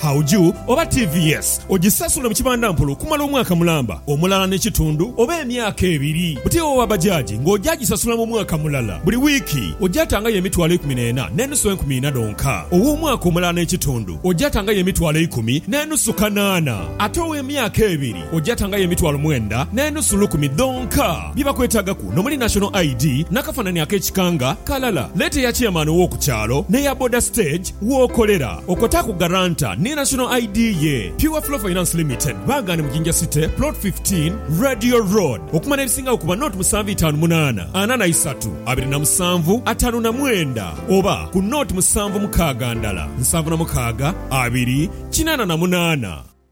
Hauju oba TVS ogisasula mu kibandampola okumala omwaka mulamba omulala n'ekitundu oba emyaka ebiri. Buti owa bajaji ng'oja gisasula mu mwaka mulala. Buli wiiki oja tangayo emitwalo eikumi n'ena n'enusu enkumi ina dhonka. Ow'omwaka omulala n'ekitundu oja tangayo emitwalo eikumi n'enusu kanaana. Ate ow'emyaka ebiri oja tangayo emitwalo mwenda n'enusu lukumi dhonka. Bye bakwetagaku n'omuli National ID n'akafanani ak'ekika nga kalala. Leeta eya Chairman ow'oku kyalo n'eya Boda Stage. W'okolera, okwotaaku garanta ni National ID ye. Pure Flow Finance Limited baagane mu Jinja City, Plot 15, Radio Road. Okumala ebisingagho ku banoti musanvu itaanu munaana ana na isatu abiri na musanvu ataanu na mwenda oba ku noti musanvu mukaaga ndala nsanvu na mukaaga abiri kinaana na munaana.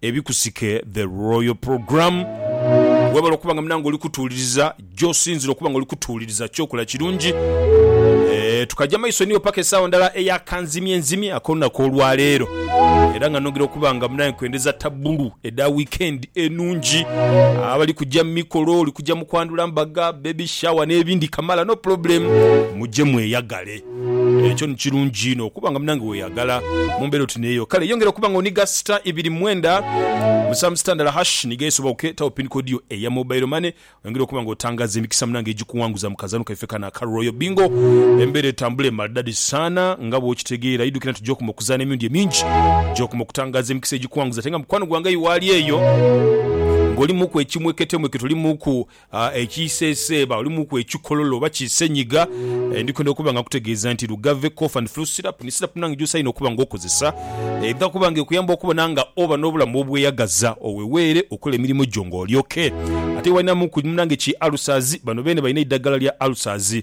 Ebikusike The Royal Programme. Webale okuba nga munange oli kutuuliriza gy'osinzira okuba nga oli kutuuliriza. Kyokola kirungi. Eeh, tukagya maiso niyo paka esaawa ndala eya kanzimye nzimye ak'olunaku olwa leero. Era nga nongera okuba nga munange kwendeza tabulu edha weekend enungi. Abali kugya mu mikolo, oli kugya mu kwandhula mbaga, baby shower n'ebindi kamala no problem. Mugye mweyagale. Ekyo ni kirungi inho okuba nga munange weeyagala mu mbeera oti n'eyo. Kale yongera okuba nga oniga sita ibiri mwenda musanvu sita ndala hash ni ghaisi oba okeetawo pin code yo eya mobile money oyongere okuba nga otangaaza emikisa munange egikuwanguza mu kazano kaife kano aka Royal Bingo. Embeera etambule maridadi saana nga bw'okitegeera. Idukira nti gy'okoma okuzaana emirundi emingi gy'okoma okutangaaza emikisa egikuwanguza ate nga mukwano gwange aye waali eyo ng'olimuuku ekimweketemu ekyo tolimuuku A Ekiisa eseeba olimuku ekikololo oba ki senyiga, ndi kwenda okuba nga nkutegeeza nti Lugave Cough and Flu Syrup ni syrup nnangi gyosainha okuba nga okozesa. Eidha kuba nga ekuyamba okubona nga oba n'obulamu obweyagaza oweweere okola emirimo gyo nga oli ok. Ate wainamuku munange ki ulcers, bano beene balina eidagala lya ulcers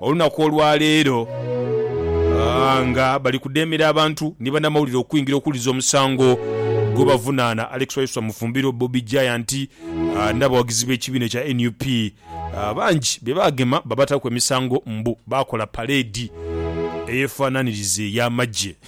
Olunaku olwa leero nga bali kudheemera abantu ni banamawulire okwingira okuwuliriza omusango gwebavunaana Alex Waiswa Mufumbiro, Bobi Giant n'abawagizi b'ekibiina ekya nup bangi be baagema babataaku emisango mbu baakola paleedi eyeefaananiriza ey'amagye.